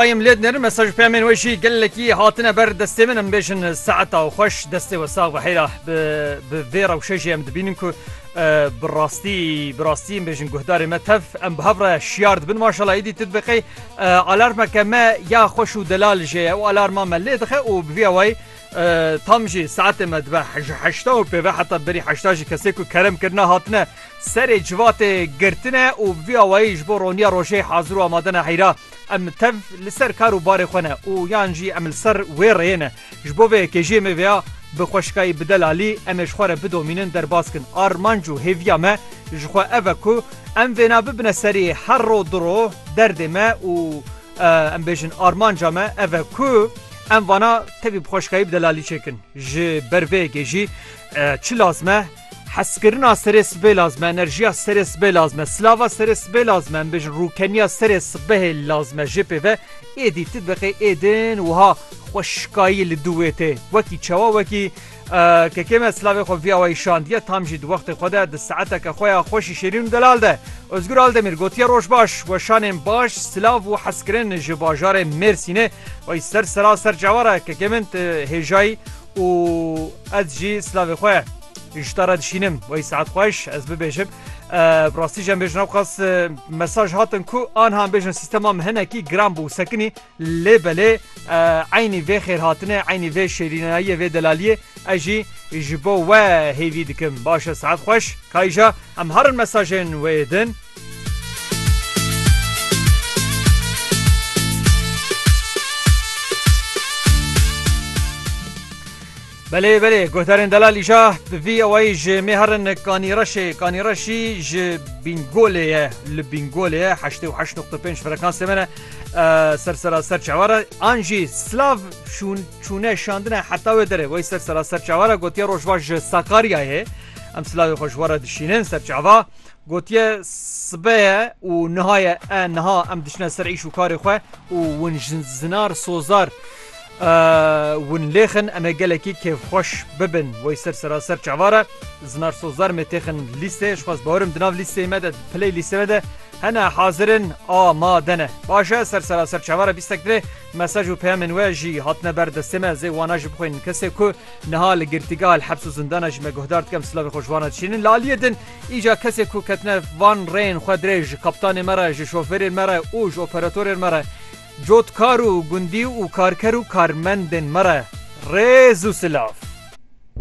Em lê dinerin mesaj û peyamên we jî gelekî hatine ber destê min. Em bêjin saeta xweş destê we sax be heyra bi vê rewşe jî em dibînin ku bi rastî bi rastî em bêjin guhdarê me tev em bi hev re şiyar dibin maşala êdî tu dibê qey alarmeke me ya xweş û delal jê ye û alarma me lê dixe û bi vî awayî tam jî saetê me dibe ji heşta û pêve heta berî heşta jî kesê ku kerem kirine hatine serê civatê girtine û bi vî awayî ji bo roniya rojê hazir û amade ne heyra Em tev li ser kar û barê xwe ne û yan jî em li ser wê rêyê ne. Ji bo vê yekê jê me vêya bi xweşikayî bi delalî em ê ji xwe re bidomînin derbas kin. Armanc û hêviya me ji xwe ev e ku em vêna bibine serî her ro du ro derdê me û em bêjin armanca me ev e ku em vana tevî bi xweşikayî bi delalî çêkin. Ji ber vê yekê jî çi lazim e? Hezkirina serê sibê lazim e, enerjiya serê sibê lazim e, silava serê sibê lazim e, em bêjin rûkeniya serê sibehê lazim e jê pê ve êdî tu diqê êdin wiha xwe şikayî li dû wê tê wekî çawa wekî Kekê me silavê xwe vî awayî şandiye tam jî di wextê xwe de di saeteke xwe ya xweşî şêrîn û delal de Ozgur Aldemîr gotiye roj baş weşanên baş silav û hezkirin ji bajarê Mêrsînê wey ser sera ser cewara kekê min tu hêjayî û ez jî silavê xwe ji te re dişînim wey saet xweş ez bibêjim bi rastî jî em bêjin ewqas mesaj hatin ku anha em bêjin sîstema min hinekî giran bû sekinî lê belê eynî vê xêrhatine eynî vê şêrînayiyê vê delaliyê ez jî ji bo we hêvî dikim baş e saet xweş kayîja em herin mesajên wê din Belê belê guhdarên delal îja bi vî ewayî ji mê herin kanîreşê kanîreşî ji bîngolê ye li bîngolê ye heştê û heşt nokta pênc frekansê me ne ser seraser çewara an jî slav şûn çûne şandine heta wê derê wey ser seraser çewara gotiye rojva ji sakariyayê em slavê xweşwara dişînin ser çava Gotiye sibe ye û niha ye e niha em diçine ser îş û karê xwe û win jin zinar sozar win lêxin em ê gelekî kêfxweş bibin wey ser seraser çavare zinar sozar mê têxin lîstê ji xwez bawerim di nav lîstê me de piley lîstê me de hene hazirin a ma dene başe ser seraser çavare bîstek dê mesaj û peyamên we jî hatine ber destê me zê wana ji bixwên kesê ku niha li girtîgeha li hebs û zindana ji me guhdar dikem silavê xwe ji wana dişînin li aliyê din Îca kesê ku ketine van rêyên xwe dirê ji kaptanê me re, ji şofêrên me re û ji operatorên me re, cotkar û gundî û karker û karmendên me re rêz û silav.